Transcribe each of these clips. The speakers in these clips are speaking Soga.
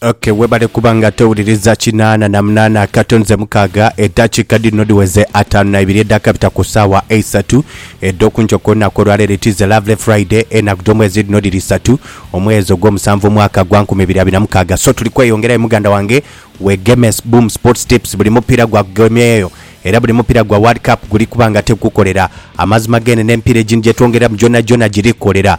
Okay, webale kuba nga towuliriza kinaana na munaana akato nze mukaaga eddakiika dhino dhiweze ataanu na ibiri edhakabita ku ssaawa eisatu edh'okunkyoka olunaku olwaleero it is a lovely friday enaku dh'omwezi dhino dhiri isatu omwezi ogw'omusanvu omwaka gwa nkumi ibiri abiri na mukaaga so tuli kweyongerayo muganda wange wegemes boom sports tips buli mupiira gwakugemyeyo era buli mupiira gwa world cup guli kuba nga ate gukolera amazima gene n'emipiira egindi gyetwongerera mu gyona gyona giri kukolera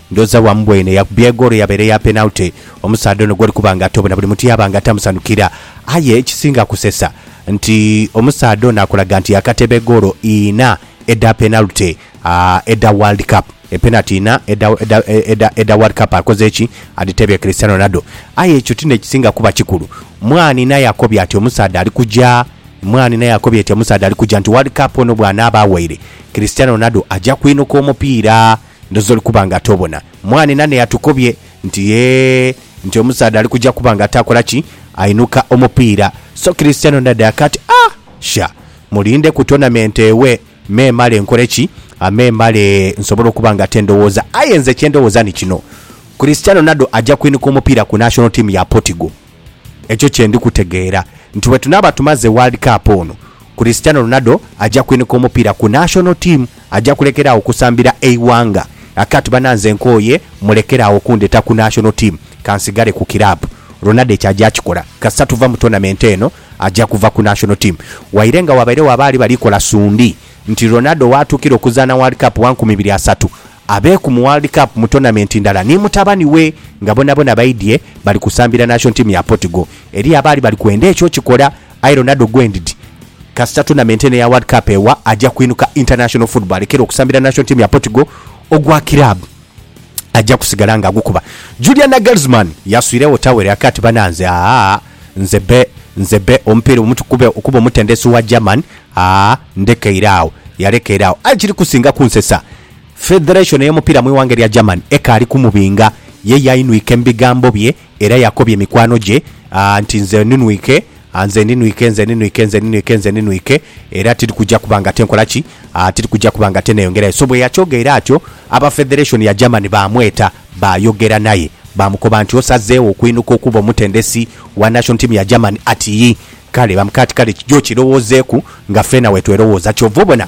Ndhooza bwamubwene yakubye egoolo eyabaire eya penalty. Omusaadha ono gw'oli kuba nga ate obona buli muntu yaaba nga atamusanhukira. Aye ekisinga kusesa nti omusaadha ono akulaga nti yaakateeba egoolo inha edha penalty edha World Cup. Epenati inha edha edha World Cup akoze ki? Adhiteebye Cristiano Ronaldo. Aye ekyo ti n'ekisinga kuba kikulu. Mwani naye akobye ati omusaadha ali kuja, Mwani naye akobye ati omusaadha ali kuja nti World Cup ono bw'anaaba awaire, Cristiano Ronaldo aja kwinuka omupiira. Ndhoozi oli kuba nga tobona. Mwaane nane yatukobye nti yee nti omusaadha ali kuja kuba nga takola ki? Ainuka omupiira. So Cristiano nadaya kati ah! Sha! Mulinde ku tournament ewe me male nkole ki? Me male nsobole okuba nga te ndowooza. Aye nze kye ndowooza ni kino, Cristiano nado aja kwinuka omupiira ku national team ya Portugal. Ekyo kye ndi kutegeera nti bwe tunaaba tumaze World Cup ono, Cristiano Ronaldo aja kwinika omupiira ku National Team, aja kulekera agho kusambira eighanga. Akati bana nze nkooye mulekere agho kundheta ku National Team, kansigale ku kiraabu. Ronaldo ekyo aja kikola kasita tuva mu tournament eno, aja kuva ku National Team. Waire nga wabairegho abaali bali kola suundii nti Ronaldo waatuukira okuzaana World Cup wa nkumi ibiri asatu, Abeeku mu World Cup mu tournament ndala ni mutabani we nga bonabona baidhye bali kusambira nation team ya Portugal. Eriyo abaali bali kwenda ekyo okikola aye Ronaldo gwendid kasita tournament eno eya World Cup ewa aja kwinuka international football alekere okusambira nation team ya Portugal ogwa club aja kusigala nga agukuba. Julian Nagelsmann yaswiregho towel yake ati bananze aah nze be nze be omupiira omuti kube okuba omutendesi wa German aah ndekeire agho. Yalekeire agho aye kiri kusinga kunsesa Federation ey'omupiira mu ighanga erya Germany ekaali kumubinga, ye yainwike mu bigambo bye era yakobye mikwano gye nti, Nze ninwike, nze ninwike, nze ninwike, nze ninwike, nze ninwike era tiri kuja kuba ngate nkola ki? Tiri kuja kuba ngate neyongerayo. So bweyakyogeire atyo, aba Federation ya Germany baamweta baayogera naye baamukoba nti, Osazeegho okwinuka okuba omutendesi wa national team ya Germany? Ati, Yii. Kale, bamukati kale kija okirowoozeeku nga feena wetwerowooza. Kyova obona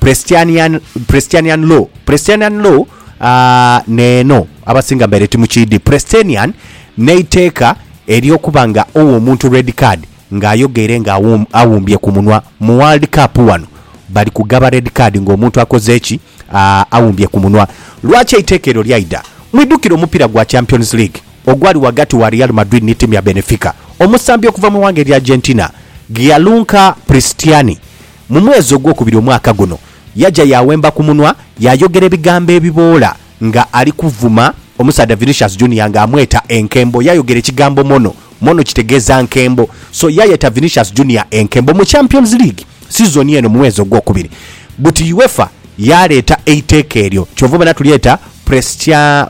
Presbyterian, Presbyterian law. Presbyterian law ah, neeno abasinga mbaire timukiidhi. Presbyterian n'eiteeka ery'okuba nga owa omuntu red card ng'ayogeire nga awum- awumbye ku munwa. Mu World Cup wano bali kugaba red card ng'omuntu akoze ki? Ah, awumbye ku munwa. Lwaki eiteeka eryo lyaidha? Mwidhukire omupiira gwa Champions League ogwali ghagati wa Real Madrid ni tiimu ya Benfica. Omusambi okuva mu ighanga erya Argentina, Gianluca Pristiani Mu mwezi ogwokubiri omwaka guno, yaja yaawemba ku munwa yaayogera ebigambo ebiboola nga ali kuvuma omusaadha Vinicius Junior nga amweta enkembo. Yaayogera ekigambo mono. Mono kitegeeza nkembo. So yaayeta Vinicius Junior enkembo. Mu Champions League sizoni eno mu mwezi ogwokubiri, buti Uefa yaaleeta eiteeka eryo kyova obona tulyeta Prestia,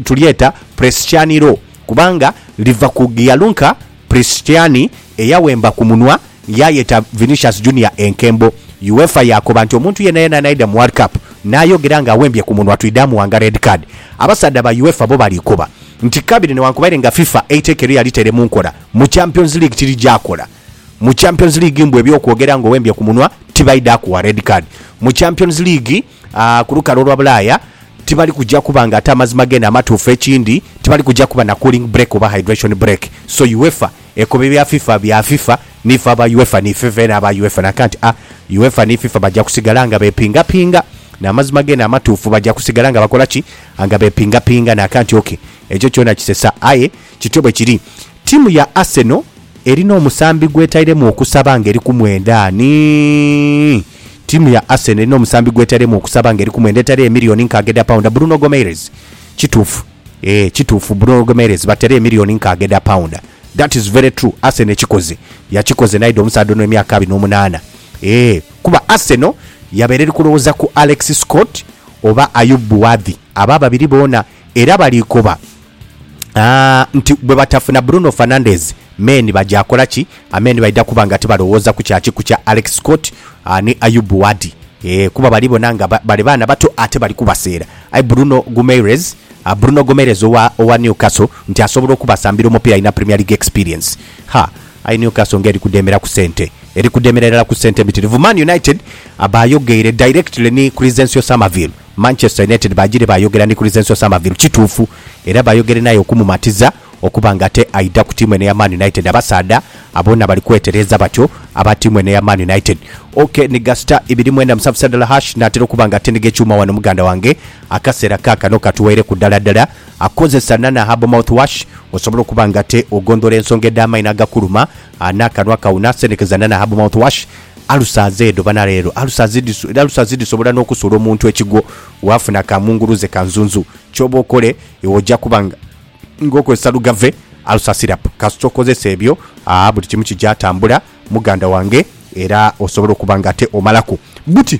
tulyeta Prestiani Law kubanga liva ku Gianluca Cristiani eyawemba ku munwa yaayeta Vinicius Junior enkembo. Uefa yaakoba nti omuntu yenayena anaidha mu World Cup n'ayogera ng'awembye ku munwa twidha muwanga red card. Abasaadha ba Uefa bo bali koba nti kabiri newankubaire nga FIFA eiteeka eryo yalitere mu nkola mu Champions League tirigya kola. Mu Champions League mbu eby'okwogera ng'owembye ku munwa tibaidha kuwa red card mu Champions League. Aa, ku lukalu olwa Bulaaya, tibali kuja kuba nga ate amazima geene amatuufu. Ekindi, tibali kuja kuba na cooling break oba hydration break. So UEFA ekoba ebya FIFA bya FIFA, niife aba UEFA ni fifeene aba UEFA. Nakanti a UEFA ni FIFA baja kusigala nga bepingapinga n'amazima geene amatuufu. Baja kusigala nga bakola ki? Nga bepingapinga. Nakanti, OK, ekyo kyona kisesa, aye kityo bwe kiri. Tiimu ya Arsenal erina omusambi gw'etairemu okusaba ng'eri ku mwenda ani? Tiimu ya Arsenal erina omusambi gw'etairemu okusaba ng'eri ku mwenda etari emiliyoni nkaaga edha paunda, Bruno Gomeirez. Kituufu. Eeh, kituufu, Bruno Gomeirez batera emiliyoni nkaaga edha paunda. That is very true. Arsenal ekikoze, yakikoze n'aidha omusaadha ono emyaka abiri n'omunaana. Eeh, kuba Arsenal yabeera eri kulowooza ku Alex Scott oba Ayoub Bouadhi. Abo ababiri boona. Era balikoba nti bwebatafuna Bruno Fernandes, men baja kola ki? Amen baidha kuba nga tibalowooza ku kya kiku kya Alex Scott ni Ayoub Wadi kuba bali bona nga bali baana bato ate bali kubaseera. Aye Bruno Gumeirez Bruno Gomeirez owa owa Newcastle nti asobola okubasambira omupiira alina Premier League experience. Ha, aye Newcastle nga eri kudemera ku sente. Eri kudemera irala ku sente mbitirivu. Man United bayogeire directly ni Crysencio Summerville. Manchester United baagire baayogera ni Crysenso Summerville kituufu era baayogere n'aye okumumatiza okuba nga ate aidha ku tiimu eno eya Man United. Abasaadha aboona bali kwetereeza batyo aba tiimu eno eya Man United. OK, ni ga star ibiri mwenda musanvu sadala hash, naatera okuba nga atindiga ekyuma wano muganda wange. Akaseera kaakano katuweireku ddala ddala. Kozesa Nana Herbal Mouthwash osobole okuba nga ate ogondhola ensonga edh'amaino agakuluma. A N'akanwa kau naasenhekeza na nahabu, mouthwash, Alusazi edho bana leero alusazi dhiso, era alusazi dhisobola n'okusuula omuntu ekigwo waafuna ka munguluze ka nzunzu. Ky'oba okole iwe oja kuba nga nga okozesa lugave, ulcer syrup, kasita okozesa ebyo aa buli kimu kija tambula muganda wange era osobola okuba nga ate omalaku buti.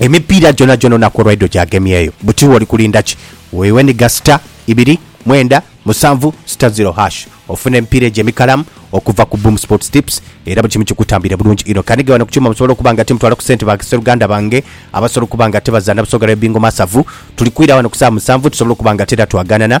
Emipiira gyonagyona olunaku olwaidho gyagemyeyo. Buti oli kulinda ki? Weweniga star ibiri mwenda musanvu star zero hash ofune emipiira egyo emikalamu okuva ku Boom Sports Tips era buli kimu kikutambwire bulungi inho. Kanige wano ku kyuma musobole okuba nga timutwala ku sente ba sseruganda bange abasobola okuba nga tebazaana Busoga Dabi Bingo Masavu. Tuli kwira wano ku saawa musanvu tusobole okuba nga te era twaganana